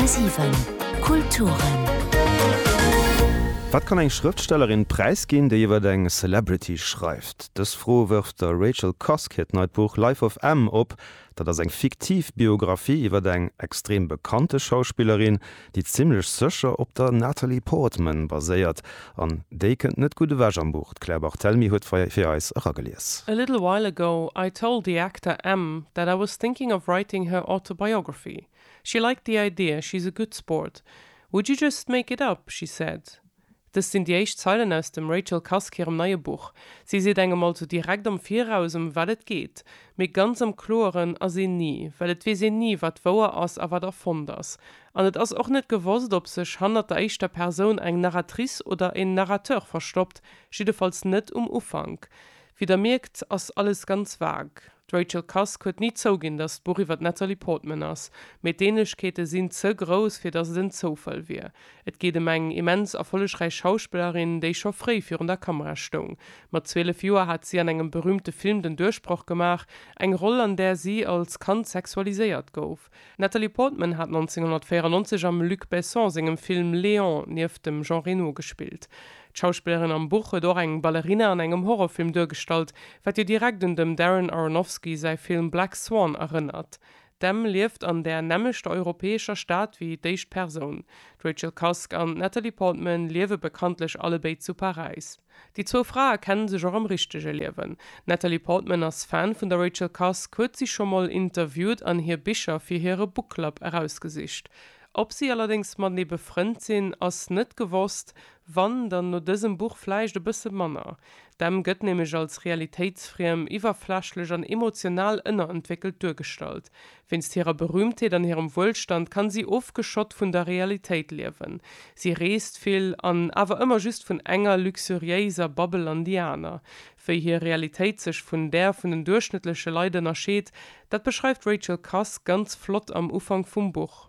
10,7 Kulturen. Wat kann eng Schrëftstellerin präisginn, déi iwwer eng Celebrity schreift? Dës Fro wërft der Rachel Cusk hiert neit Buch Life of M op. Dat ass eng fiktiv Biographie iwwer eng extrem bekannte Schauspillerin, déi zimmlech sécher op der Natalie Portman baséiert, an déi kënnt net gutt ewech am Buch. D'Claire Barthelmy huet fir eis eragelies. A little while ago, I told the actor M that I was thinking of writing her autobiography. She liked the idea, she's a good sport. Would you just make it up? she said. Dëst sinn déi éischt Zeilen aus dem Rachel Cusk hirem neie Buch. Si seet engem also direkt am Viraus, ëm wat et geet. Mee ganz am Kloeren ass een ni, well et weess een ni, wat wouer ass a wat erfonnt ass. An et ass och net gewosst, ob sech hannert der éischter Persoun eng Narratrice oder en Narrateur verstoppt, jiddefalls net um Ufank. Wéi der mierkt, ass alles ganz vague. D'Rachel Cusk huet ni zouginn, datt d'Buch iwwer d'Natalie Portman ass, mee d'Ähnlechkeete sinn ze grouss, fir datt et en Zoufall wier. Et geet ëm eng immens erfollegräich Schauspillerin, déi scho fréi virun der Kamera stoung. Mat 12 Joer hat si an engem berüümte Film den Duerchbroch gemaach, eng Roll, an där si als Kand sexualiséiert gouf. D'Natalie Portman hat 1994 am Luc Besson sengem Film Léon nieft dem Jean Reno gespillt. D'Schauspillerin am Buch huet och eng Ballerina an engem Horrorfilm duergestallt, wat jo direkt un dem Darren Aronofsky säi Film Black Swan erënnert. D'Em lieft an där nämmlechter europäescher Stad wéi d'éischt Persoun. D'Rachel Cusk an d'Natalie Portman liewe bekanntlech allebéid zu Paräis. Déi zwou Frae kenne sech och am richtege Liewen. D'Natalie Portman ass Fan vun der Rachel Cusk, huet si scho mol interviewt an hir Bicher fir hire Book Club erausgesicht. Ob si allerdéngs matenee befrënnt sinn, ass net gewosst, wann, dann no dësem Buch vläicht e bësse manner. D'Em gëtt nämlech als realitéitsfriem, iwwerflächlech an emotional ënnerentwéckelt duergestallt. Wéinst hirer Berühmtheet an hirem Wuelstand kann si ofgeschott vun der Realitéit liewen. Si reest vill an awer ëmmer just vun enger luxuriéiser Babbel an déi aner. Wéi hir Realitéit sech vun där vun den duerchschnëttleche Leit ënnerscheet, dat beschreift d'Rachel Cusk ganz flott am Ufank vum Buch.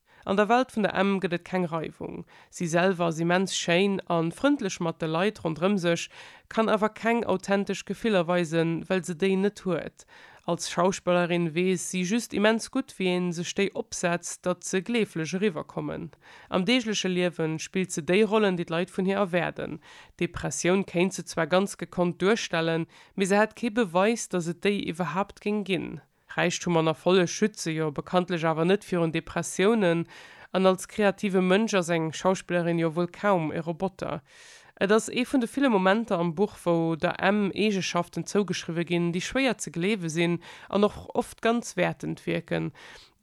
An der Welt vun der Emm gëtt et keng Reiwung. Si selwer ass immens schéin a frëndlech mat de Leit ronderëm sech, kann awer keng authentesch Gefiller weisen, well se déi net huet. Als Schauspellerin weess si just immens gutt, wéi ee sech déi opsetzt, datt se gleeflech eriwwerkommen. Am deegleche Liewe spillt se déi Rollen, déi d'Leit vun hir erwaarden. Depressioun kéint se zwar ganz gekonnt duerstellen, mee se hätt kee Beweis, datt et déi iwwerhaapt géing ginn. Räichtum an Erfolleg schütze jo bekanntlech awer net virun Depressiounen, an als kreative Mënsch ass eng Schauspillerin jo wuel kaum e Roboter. Et ass ee vun de ville Momenter am Buch, wou der Em Eegeschaften zougeschriwwe ginn, déi schwéier ze gleewe sinn an och oft ganz wäertend wierken.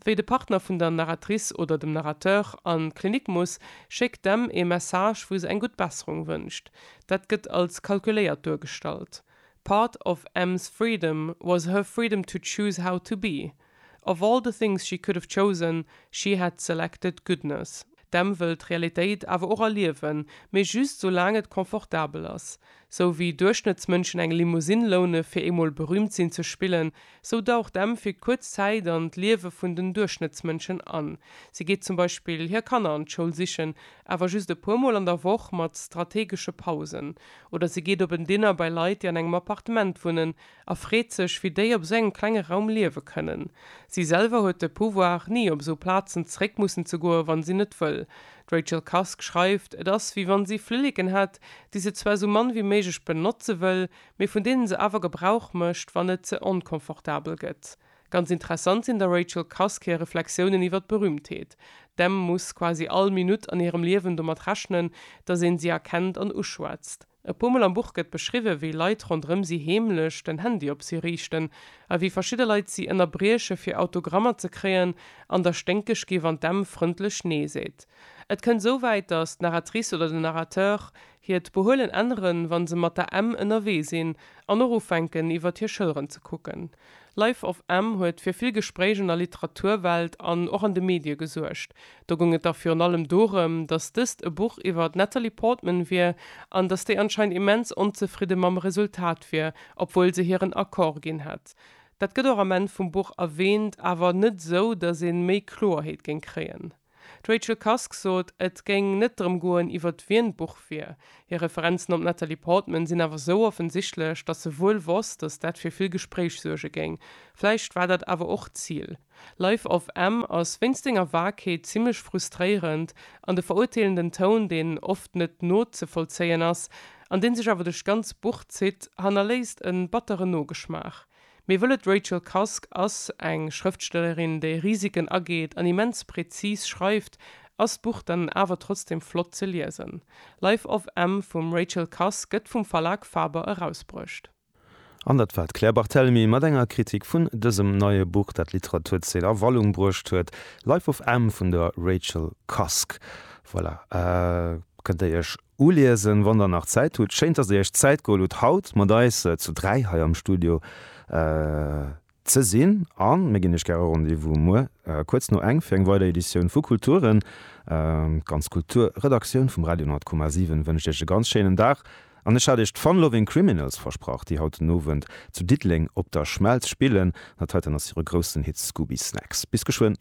Wéi de Partner vun der Narratrice oder dem Narrateur an d'Klinik muss, schéckt d'Em ee Message, wou se eng gutt Besserung wënscht. Dat gëtt als kalkuléiert duergestallt. Part of Em's freedom was her freedom to choose how to be. Of all the things she could have chosen, she had selected goodness. D'Em wëll d'Realitéit awer och erliewen, mee just soulaang et confortabel ass. Sou wéi Duerchschnëttsmënschen eng Limousine loune fir eemol berüümt sinn ze spillen, sou daucht d'Em fir kuerz Zäit an d'Liewe vun den Duerchschnëttsmënschen an. Si geet zum Beispill hir Kanner an d'Schoul sichen, awer just e puer Mol an der Woch mat strategesche Pausen. Oder si geet op en Dinner bei Leit, déi an engem Appartement wunnen, a freet sech, wéi déi op esou engem klenge Raum liewe kënnen. Si selwer huet de Pouvoir, ni op esou Plazen zeréck mussen ze goen, wann si net wëll. D'Rachel Cusk schreift, et ass, wéi wann si Flilleken hätt, déi se zwar esou mann wéi méiglech benotze wëll, mee vun deene se awer Gebrauch mécht, wann et ze onconfortabel gëtt. Ganz interessant sinn der Rachel Cusk hir Reflexiounen iwwer d'Berühmtheet. D'Em muss quasi all Minutt an hirem Liewen domat rechnen, datt een si erkennt an uschwätzt. E puer Mol am Buch gëtt beschriwwen, wéi Leit ronderëm si heemlech den Handy op si riichten a wéi verschidde Leit si ënnerbrieche fir Autogrammer ze kréien an der sténkeg gi wann d'Em frëndlech Nee seet. Et kënnt esou wäit, datt d'Narratrice oder den Narrateur hiert Behuelen änneren, wa se mat der Em ënnerwee sinn an och ufänken iwwert hir Schëlleren ze kucken. Life of M huet fir vill Gespréich an der Literaturwelt an och an de Medie gesuergt. Do goung et da virun allem dorëm, datt dëst e Buch iwwer d'Natalie Portman wier an datt déi anscheinend immens onzefridde mam Resultat wier, obwuel se hiren Accord ginn hätt. Dat gëtt och am Enn vum Buch erwäänt, awer net esou, datt ee méi Kloerheet géing kréien. D'Rachel Cusk sot, et géing net drëm goen, iwwert wien d'Buch wier. Hir Referenzen op d'Natalie Portman sinn awer sou offensichtlech, datt se wuel wosst, datt dat fir vill Gespréich suerge géing. Vläicht war dat awer och d'Zil. Life of M ass wéinst senger Vagheet zimmlech frustréierend, an de verurteelenden Toun, deen oft net nozevollzéien ass, an dee sech awer duerch d'ganz Buch zitt, hannerléisst e batteren Nogeschmaach. Mir wëllen D'Rachel Cusk ass eng Schrëftstellerin, déi Risiken ageet an immens präzis schreift. Ass d'Buch dann awer trotzdem flott ze liesen? Life of M vum Rachel Cusk gëtt vum Verlag Faber erausbruecht. An dat war d'Claire Barthelemy mat enger Kritik vun dësem neie Buch, dat d'Literaturzeen a Wallung bruecht huet, Life of M vun der Rachel Cusk. Voilà, kënnt Dir Iech Uliesen, wann der nach Zäit hutt. Schéin, dass der iech d'Zäit geholl hutt haut mat eis zu dräi hei am Studio ze sinn a mir ginn iech gäre Rendez-vous muer kuerz no eng fir eng weider Editioun vu Kulturen. D'ganz Kulturredaktioun vum Radio 10,7 wënscht iech e ganz schéinen Dag an ech hat iech d'Fun Loving Criminals versprach, déi haut den Owend zu Diddeleng op der Schmelz spillen. Dat heiten ass hire groussen Hit Scooby Snacks. Bis geschwënn.